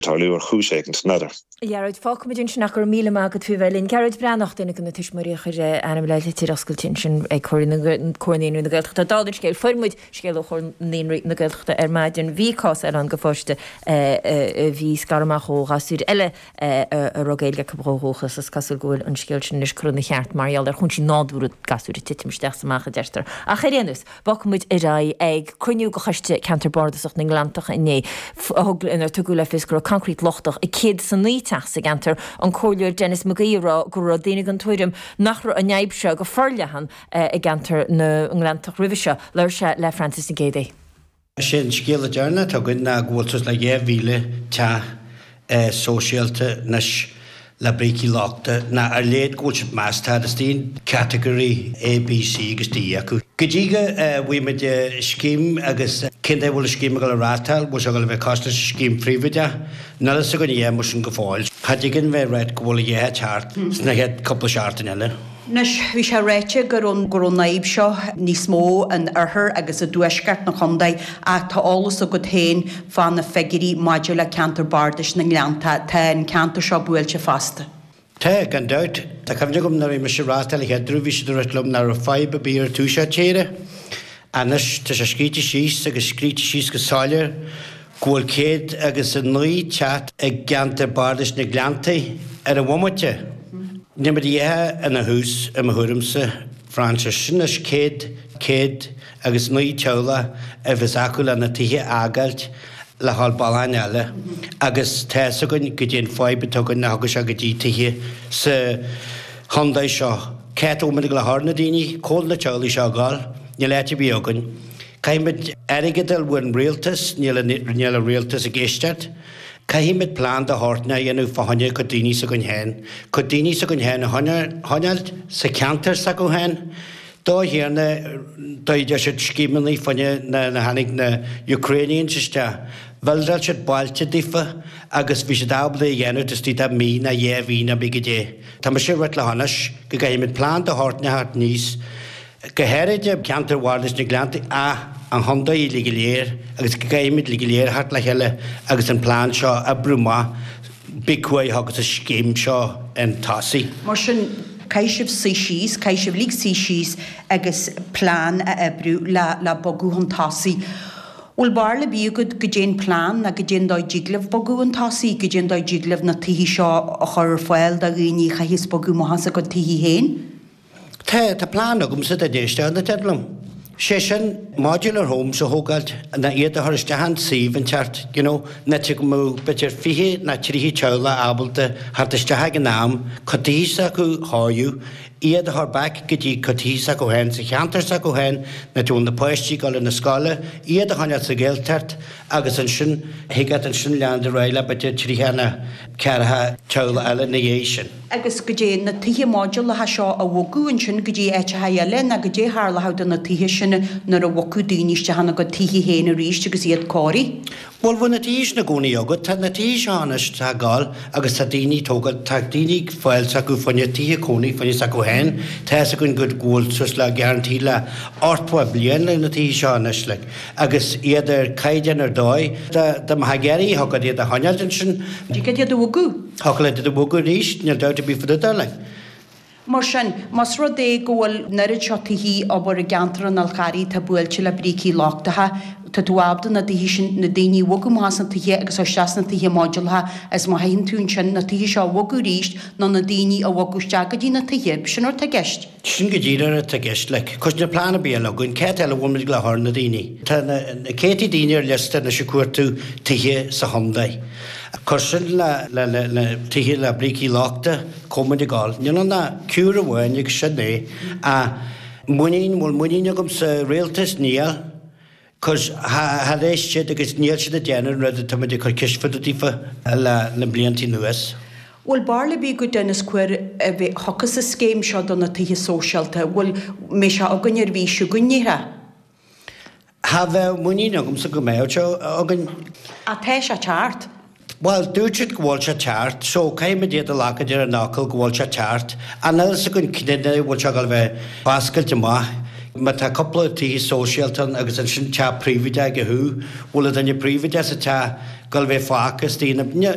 tarlú ar chúis éigin. Doesn't matter. Gearóid, fágfaimid ansin ach go raibh míle maith agat faoi bheith linn. Gearóid Breathnach, duine de na tuismitheoirí a chuir a ainm le litir oscailte ansin ag Comhar Naíonraí na Gaeltachta. Dála an scéil, fuair muid scéal ó Chomhar Naíonraí na Gaeltachta ar maidin. Bhí cás eile ann de pháiste a bhí scartha amach ó ghasúir eile a raibh Gaeilge acu ó dhúchas. Is cosúil go bhfuil an scéal sin anois curtha ina cheart mar gheall ar chúinsí nádúrtha gasúir ag titim isteach is amach, a deirtear. Ach ar aon nós. Bogfaidh muid ar aghaidh ag cruinniú de Choiste Ceantair Bardasach na nGleanntach inné inar tugadh le fios go raibh coincréit lochtach i gcéad is a naoi teach sa gceantar, an Comhairleoir Denis McGee ag rá go raibh daoine den tuairim nach raibh an fhadhb seo go forleathan i gceantar na nGleanntach roimhe seo. Labhair sé le Frances Nic Géidigh. Is é an scéal deireanach atá againn ná go bhfuil suas le 2,000 teach sóisialta anois le brící lochtach ná ar a laghad go bhfuil siad measta isteach in Category A, B, C agus D acu. Go dtí go bhfaighidh muid scéim agus cén dóigh a bhfuil an scéim ag gabháil a reáchtáil, bhfuil sé ag gabháil a bheith cosúil leis an scéim phríobháideach? Níl fhios againn a dhath mar sin go fóill. Cha dtig linn bheith ag ráit go bhfuil a dhath ag teacht sna chéad cúpla seachtain eile. Anois, bhí sé ráite go raibh go raibh an fhadhb seo níos mó in oirthear agus i dtuaisceart na contae ach tá eolas agat féin fá na figiúirí maidir le ceantar bardais na nGleanntach. Tá an ceantar seo buailte fosta. Tá, gan dabht. Tá cuimhne agam nuair a bhí mise ag rith don chéad uair bhí siad ag ráit liom nach raibh fadhb ar bith ar an taobh seo tíre. Anois, tá sé scríte síos agus scríte síos go soiléir. go bhfuil céad agus a naoi teach i gceantar Bardais na nGleanntach ar an bhomaite. Níl muid go díreach ina thús, i mo thuairimse, Frances. Sin anois céad, céad agus naoi teaghlach a bheas acu lena tithe a fhágáilt le haghaidh bliain eile, agus tá fhios againn goidé an fhadhb atá againn nuair a thagann sé go dtí tithe sa chontae seo. Cé atá muid ag gabháil a chur na daoine? Cá bhfuil na teaghlaigh seo ag gabháil. Níl áit ar bith againn. Caithfimid airgead a fháil ón rialtas, níl an rialtas ag éisteacht. Caithfimid plean de shórt éigin a dhéanamh fá choinne cuid daoine s'againn féin, cuid daoine s'againn féin a choinneáilt sa cheantar s'acu féin. A Thiarna, d'oibrigh siad scéimeanna nuair a tháinig na Ukrainians isteach, bhildeáil siad bailte daofa agus bhí siad ábalta é a dhéanamh taobh istigh de mhí ná dhé mhí ná cibé goidé. Tá mise ag ráit leatsa go gcaithfimid plean de shórt éigin a thabhairt aníos, go háirithe i gceantar bhardais na nGleanntach ach an chontae uilig go léir agus go gcaithfimid uilig go léir a theacht le chéile agus an plean seo a oibriú amach cibé cén uair a thigeas an scéim seo chun tosaigh. Mar sin, caithfidh sibh suí síos, caithfidh sibh uilig suí síos agus plean a oibriú le le bogadh chun tosaigh. Bhuel, barúil ar bith agat goidé an plean ná goidé an dóigh a dtig libh bogadh chun tosaigh, goidé an dóigh a dtig libh na tithe seo a chur ar fáil do dhaoine, a chaithfeas bogadh amach as a gcuid tithe féin. Tá plean agamsa dá n-éisteodh na daoine liom. Sé sin, modular homes a thógáilt ná iad a chur isteach i suíomh inteacht, you know, an áit go mbeadh b'fhéidir fiche ná tríocha teaghlach ábalta theacht isteach ag an am, cuid tithe s'acu a chóiriú, iad a chur back go dtí cuid tithe s'acu féin sa cheantar s'acu féin an áit a bhfuil na páistí ag gabháil na scoile, iad a choinneáilt sa Ghaeltacht agus ansin thiocfadh ansin leanúint ar aghaidh le b'fhéidir tríocha ná ceathracha teaghlach eile ina dhiaidh sin. agus goidé na tithe modúlacha seo a bhogadh ansin go dtí áiteacha eile ná goidé tharlódh do na tithe sin nuair a bhogfadh daoine isteach ina gcuid tithe féin aríst agus iad cóirithe. Bhuel, bhfuil na tithe sin i gcónaí agat? Tá na tithe seo anois á dtógáil agus tá daoine tógáil, tá daoine fáil s'acu fá choinne tithe cónaí fá choinne s'acu féin, tá fhios againn go bhfuil suas le guarantee le ochtó bliain le na tithe seo anois, like, agus iad ar caighdeán ar dóigh, dá mbeifeá ag iarraidh thig leat iad a choinneáilt ansin. Thiocfadh iad a bhogadh. Thiocfadh leat iad a bhogadh arís, níl dabht ar bith fá dtaobh de, like. Mar sin, más rud é go bhfuil an oiread seo tithe abair i gceantar an Fhál Carraigh atá buailte le brící lochtacha, tá tú ábalta na tithe sin, na daoine a bhogadh amach as na tithe agus isteach sna tithe modúlacha, is má thaithin tú ansin, na tithe seo a bhogadh arís, nó na daoine a bhogadh isteach go dtí na tithe, sin an rud atá i gceist. Sin go díreach atá i gceist, like. Cause níl plean ar bith eile againn, cá háit eile bhfuil muid ag gabháil a chur na daoine. Tá na céadtaí daoine ar liosta anois ag cuartú tithe sa chontae. Cuir sin le na tithe le brící lochtacha, cá bhfuil muid ag gabháil? Níl ann ach cure amháin agus sin é. An muinín, bhfuil muinín agam sa rialtas? Níl. cause char éist siad agus níl siad ag déanamh an rud atá muid ag cur ceist fá dtaobh daofa le blianta anuas. Bhfuil barúil ar bith agat, Dennis, cén uair a thiocfas an scéim seo do na tithe sóisialta. Bhuel, mbeidh sé againn ar an mhí seo chugainn? Ní hea, cha bheadh muinín agamsa go mbeadh sé againn. Ach tá sé ag teacht. Bhuel, dúirt siad go bhfuil sé ag teacht, so caithfimid iad a ghlacadh ar an fhocal go bhfuil sé ag teacht. Ach níl a fhios againn cén dóigh a bhfuil seo ag gabháil a bheith foscailte amach. Má tá cúpla tithe sóisialta ann agus ansin teach príobháideach ag a thaobh, bhfuil an duine príobháideach sa teach ag gabháil a bheith fágtha is daoine,